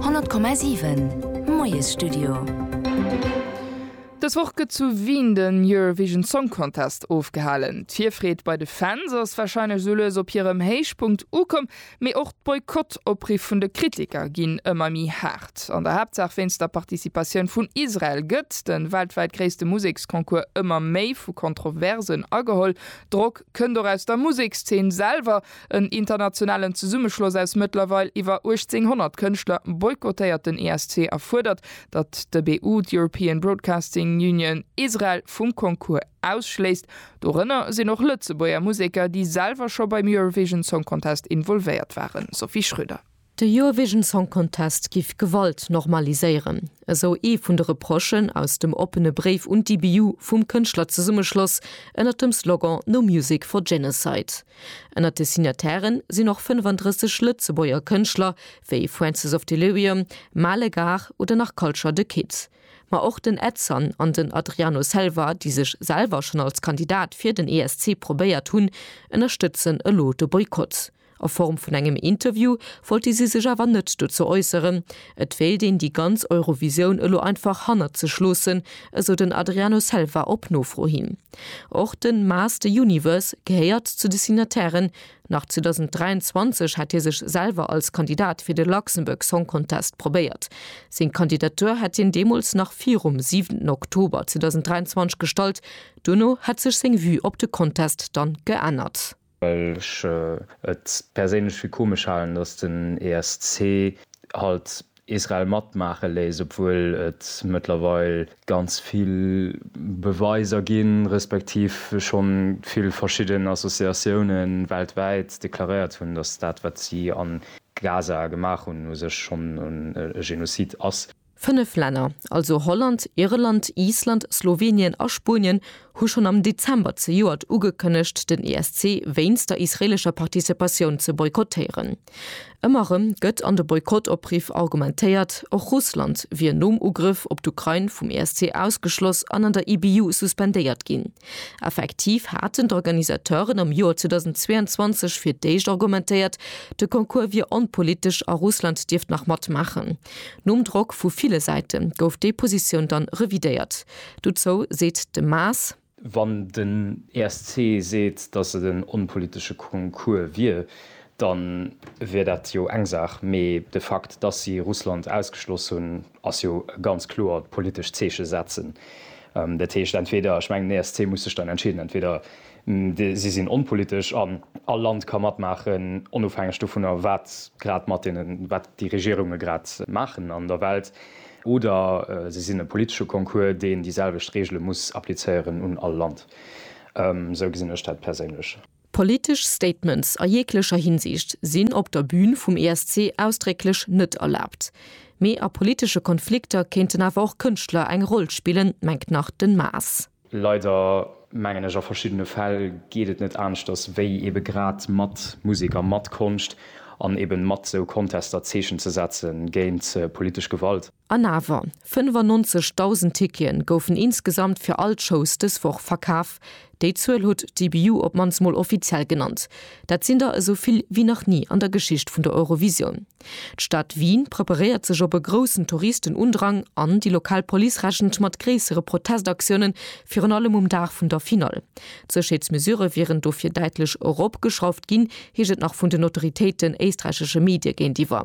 100,7 Moiesstudio. Dës Woch gëtt zu Wien den Eurovision Song Contest ofgehalen. D'Virfreed bei de Fans ass warscheinlech esou lues op hirem Héichpunkt ukomm, mee och d'Boykott-Opriffe vun de Kritiker ginn ëmmer méi haart. An der Haaptsaach wéinst der Participatioun vun Israel gëtt de weltwäit gréisste Museksconcours ëmmer méi vu Kontroversen ageholl. Drock kënnt och aus der Musekszeen selwer. En internationalen Zesummeschloss aus mëttlerweil iwwer 1800 Kënschtler boykottéiert den ESC a fuerdert, datt de BU, d'European Broadcasting Union, Israel vum Concours ausschléisst. Dorënner sinn och Lëtzebuerger Museker, déi selwer scho beim Eurovision Song Contest involvéiert waren, Sophie Schröder. De Eurovision Song Contest giff Gewalt normaliséieren, esou ee vun de Reprochen aus dem oppene Bréif un d'IBU vum Kënschtlerzesummeschloss ënnert dem Slogan No Music for Genocide. Ënnert de Signataire sinn och 35 Lëtzebuerger Kënschtler, wéi Francis of Delirium, Male Gare oder nach Culture The Kid. Ma och den Edson an den Adriano Selva, déi sech selwer schonn als Kandidat fir den ESC probéiert hunn, ënnerstëtzen elo de Boykott. A Form vun engem Interview wollte si sech awer net dozou äusseren. Et wéilt een déi ganz Eurovisioun elo einfach hannert sech loossen, esou den Adriano Selva op Nofro hin. Och de Maas the Universe gehéiert zu de Signatairen. Nach 2023 hat hie sech selwer als Kandidat fir de Luxembourg Song Contest probéiert. Seng Kandidatur hat hien deemools nach virum 7 Oktober 2023 gestallt. Duerno hat sech seng Vue op de Contest dann geännert. well ech et perséinlech fir komesch halen, datt den ESC halt Israel matmaache léisst, obwuel et mëttlerweil ganz vill Beweiser ginn, respektiv schonn vill verschidden Associatiounen weltwäit deklaréiert hunn, datt dat wat si a Gaza gemaach hunn u sech schonn e Genozid ass. Fënnef Länner, also Holland, Irland, Island, Slowenien a Spuenien, hu schonn am Dezember zejoert ugekënnegt, den ESC wéinst der israeelescher Participatioun ze boykottéieren. Ëmmer erëm gëtt an de Boykott-Opriff argumentéiert, och Russland wier nom Ugrëff op d'Ukrain vum ESC ausgeschloss an an der IBU suspendéiert ginn. Effektiv haten d'Organisateuren am Joer 2022 fir d'éischt argumentéiert, de Concours wier onpolitesch a Russland dierft nach matmaachen. Nom Drock vu ville Säite gouf déi Positioun dann revidéiert. Dozou seet de Maas. Wann den ESC seet, datt et en onpolitesche Concours wier, da wier dat jo eng Saach, mee de Fakt, datt si Russland ausgeschloss hunn, ass jo e ganz kloert politescht Zeeche setzen. Dat heescht entweder, ech mengen den ESC muss sech dann entscheeden, entweder Si sinn onpolitesch an all Land ka matmaachen, onofhängeg dovunner, wat grad mat deenen, wat déi Regierunge grad maachen an der Welt. Oder se sinn e politesche Concours, deen déi selwecht Reegele muss applizéieren un all Land. Esou gesinn ech dat perséinlech. Politesch Statements a jeeglecher Hinsicht sinn op der Bün vum ESC ausdrécklech net erlaabt. Mee a politesche Konflikter kéinten awer och Kënschtler eng Roll spillen, mengt nach den Maas. Leider, mengen ech, a verschiddene Fäll geet et net aneschters, wéi ebe grad mat Musek a mat Konscht an eben mat sou Contester Zeechen ze setzen géint politesch Gewalt. An awer, 95.000 Ticketen goufen insgesamt fir all d'Shows dës Woch verkaf. Déi Zuel huet d'EBU op d'mannst mol offiziell genannt. Dat sinn der esou vill wéi nach ni an der Geschicht vun der Eurovisioun. D'Stad Wien preparéiert sech op e groussen Touristenundrang an déi lokal Police rechent mat gréissere Protestaktiounen, virun allem um Dag vun der Finall. D'Sécherheetsmesurë wieren dofir däitlech eropgeschrauft ginn, heescht et nach vun den Autoritéiten éisträichesche Medie géintiwwer.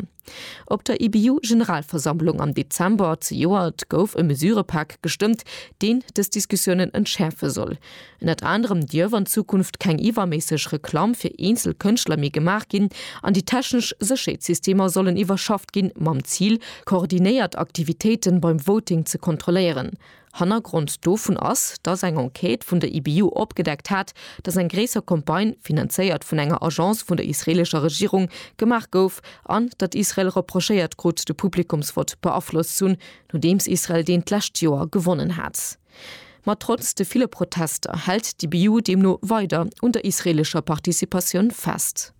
Op der IBU-Generalversammlung am Dezember zejoert gouf e Mesurëpak gestëmmt, deen dës Diskussiounen entschäerfe soll. Ënnert anerem dierf an Zukunft keng iwwerméisseg Reklamm fir eenzel Kënschtler méi gemaach ginn an déi technesch Sécherheetssystemer sollen iwwerschafft ginn, mam Zil, koordinéiert Aktivitéiten beim Voting ze kontrolléieren. Hannergrond dovun ass, dass eng Enquête vun der IBU opgedeckt hat, dass eng gréisser Campagne, finanzéiert vun enger Agence vun der israelescher Regierung, gemaach gouf an datt Israel reprochéiert krut, de Publikumsvott beaflosst z'hunn, nodeems Israel deen d'lescht Joer gewonnen hat. Ma trotz de ville Protester hält d'IBU deemno weider un der israeelescher Participatioun fest.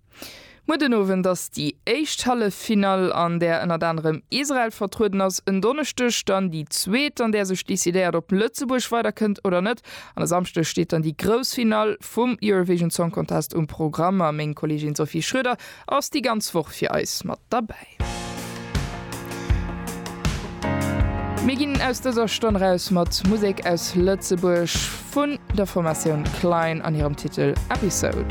Muer den Owend ass déi éischt Halleffinall, an där ënnert anerem Israel vertrueden ass. En Donneschdeg dann déi zweet, an där sech decidéiert, ob Lëtzebuerg weiderkënnt oder net. An e Samschdeg steet dann déi grouss Finall vum Eurovision Song Contest um Programm. A meng Kolleegin Sophie Schroeder ass déi ganz Woch fir eis mat derbäi. Mir ginn aus dëser Stonn eraus mat Musek aus Lëtzebuerg vun der Formatioun Klein an hirem Titel Episode.